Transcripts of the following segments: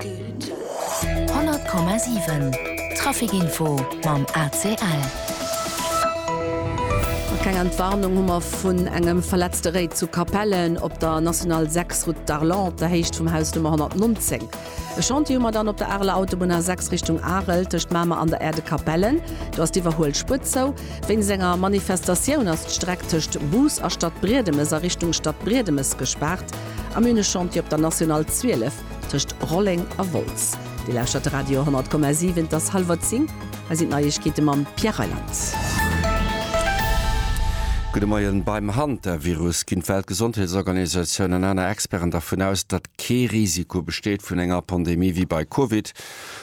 100,7 Traficinfo mam ACL. A keng Entwarnung hu mer vun engem verletzte Réit zu Capellen op der National 6, Route d'Arlon, op der Héicht vum Haus Nummer 119. E Chantier hu mer dann op der Areler Autobunn A6 Richtung Arel, tëscht Mamer an der Aire de Capellen. Do ass d'Iwwerhuelspuer zou. Wéinst enger Manifestatioun ass d'Streck tëscht Bus a Stadbriedemes a Richtung Stadbriedemes gespaart. A mir hunn e Chantier op der National 12. tëscht Rolleng a Wolz. Dir lauschtert de Radio 10,7, et ass hallwer zéng, hei sinn d'Neiegkeete mam Pierre Reyland. Gudde Moien, Beim Hantavirus ginn d'Weltgesondheetsorganisatioun an aner Experten dervun aus, datt kee Risiko besteet vun enger Pandemie wéi bei Covid.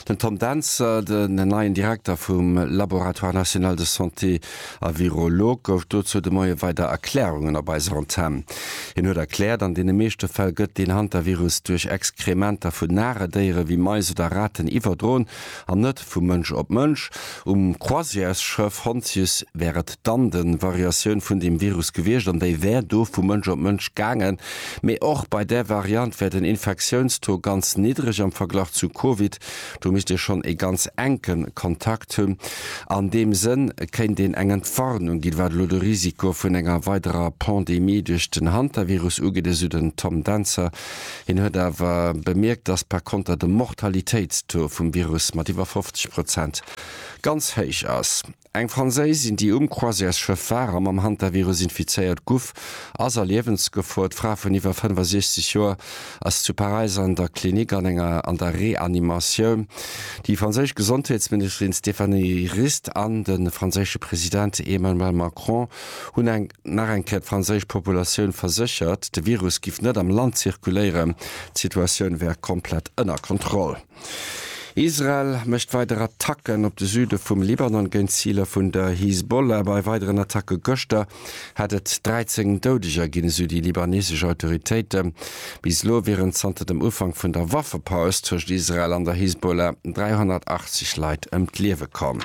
Den Tom Dentzer, den neien Direkter vum Laboratoire national de santé a Virologe, gouf dozou de Moie weider Erklärungen op eiser Antenn. Hien huet erkläert, an deene meeschte Fäll gëtt deen Hantavirus duerch Exkrementer vun nare Déiere wéi Mais oder Raten iwwerdroen an net vu Mënsch op Mënsch. Um Croisièresschëff Hontius wär et dann de Variatioun vun deem Virus gewiescht an déi wär do vu Mënsch op Mënsch gaangen. Mee och bei där Variant wär den Infektiounstaux ganz niddreg am Verglach zu Covid. Do misst ee schonn ee ganz enke Kontakt hunn. An deem Sënn kéint een eng Entwarnung ginn, wat elo de Risiko vun enger weiderer Pandemie duerch den Hantavirus ugeet, esou den Tom Dentzer, Hien huet awer bemierkt, datt par konter de Mortalitéitstaux vum Virus mat iwwer 50 Prozent ganz héich ass. Eng Franséisin, déi um Croisièresschëff war a mam Hantavirus infizéiert guff, ass a Liewensgefor. D'Fra vun iwwer 65 Joer ass zu Paräis an der Klinik an enger an der Reanimatioun. Déi franséisch Gesondheetsministerin Stéphanie Rist an de franséische President Emmanuel Macron hunn eng. Nach eng Kéier, d'franséisch Populatioun verséchert, de Virus giff net am Land zirkuléieren, d'Situatioun wär komplett ënner Kontroll. Israel mécht weider Attacken op de Süde vum Libanon géint Ziler vun der Hisbollah. Bei weideren Attacke gëschter hätt et 13 Doudeger ginn, esou déi libanesesch Autoritéiten. Bis elo wieren zanter dem Ufank vun der Waffepaus tëscht Israel an der Hisbollah 380 Leit ëm d'Liewe komm.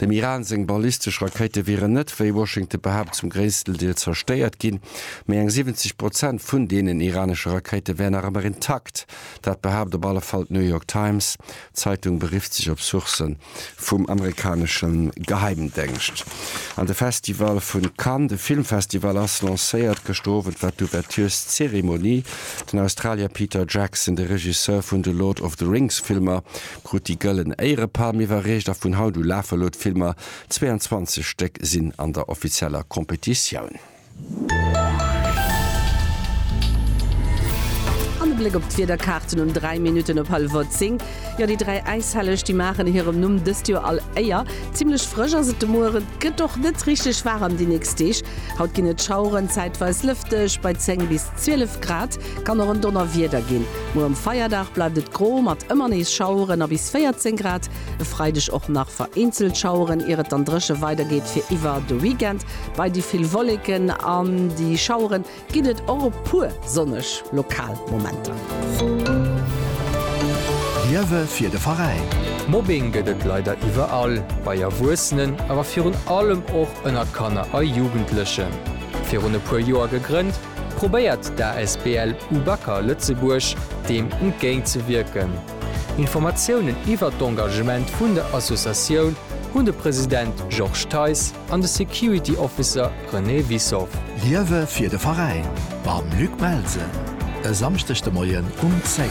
Dem Iran seng ballistesch Rakéite wieren net, wéi Washington behaapt, zum gréissten Deel zerstéiert ginn, mee eng 70 Prozent vun deenen iranesche Rakéite wären nach ëmmer intakt. Dat behaapt op alle Fall d'New York Times. D'Zeitung berifft sech op Sourcë vum amerikanesche Geheimdéngscht. An de Festival vu Cannes, de Filmfestival, ass lancéiert. Gëschter Owend war d'Ouvertureszeremonie. Den Australier Peter Jackson, de Regisseur vun de Lord of the Rings Filmer, Krut déi gëllen Éierepalm iwwerreecht a vun haut u lafe lo d'Filmer, 22 Stéck sinn an der offizieller Competitioun. An e Bléck op d'Wiederkaarten un 3 Minutten op hallwer 10. Jo, déi dräi Äishelleg, déi maachen hirem Numm dëst Joer all Éier. Zimmlech frësch ass et de Muer, et gëtt och net richteg waarem déi nächst Deeg. Haut ginn et Schaueren, zäitweis lëfteg bei 10 bis 12 Grad. Kann och en Donnerwieder ginn. Muer um Feierdag bleift et gro mat ëmmer nees Schaueren a bis 14 Grad. E Freideg och nach vereenzelt Schaueren, ier et dann dréche weidergeet fir iwwer de Weekend. Bei déi vill Wolleken an déi Schauere ginn et och e puer sonneg lokal Momenter. Liewe fir de Veräin. Mobbing gëtt et leider iwwerall, bei Erwuessenen, awer virun allem och ënnert Kanner a Jugendlechen. Virun e puer Joer gegrënnt, probéiert d'asbl UBAKER Lëtzebuerg deem entgéint ze wierken. Informatiounen iwwert d'Engagement vun der Associatioun hunn de President Georges Theis an de Security Officer René Wissow. Liewe fir de Veräin mam Luc Melsen e Samschdeg de Moien um 10.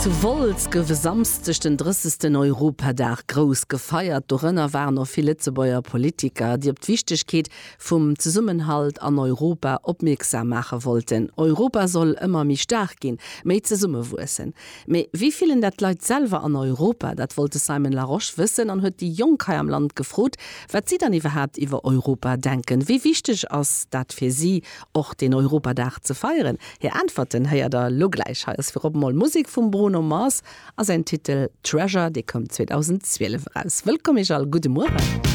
Zu Wolz gouf e Samschdeg den 30. Europadag grouss gefeiert. Dorënner waren och vill Lëtzebuerger Politiker, déi op d'Wichtegkeet vum Zesummenhalt an Europa opmierksam maache wollten, Europa soll ëmmer méi staark ginn, méi zesummewuessen. Mee wéi fillen dat d'Leit selwer an Europa? Dat wollt de Simon Larosche wëssen an huet déi Jonk hei am Land gefrot, wat si dann iwwerhaapt iwwer Europa denken. Wéi wichteg ass dat fir si, och deen Europadag ze feieren? Hir Äntwerten héiert der elo gläich. Hei ass virop emol Musek vum Bruno Mars a säin Titel Treasure, dee koum 2012 eraus. Wëllkomm Iech all, gudde Mueren.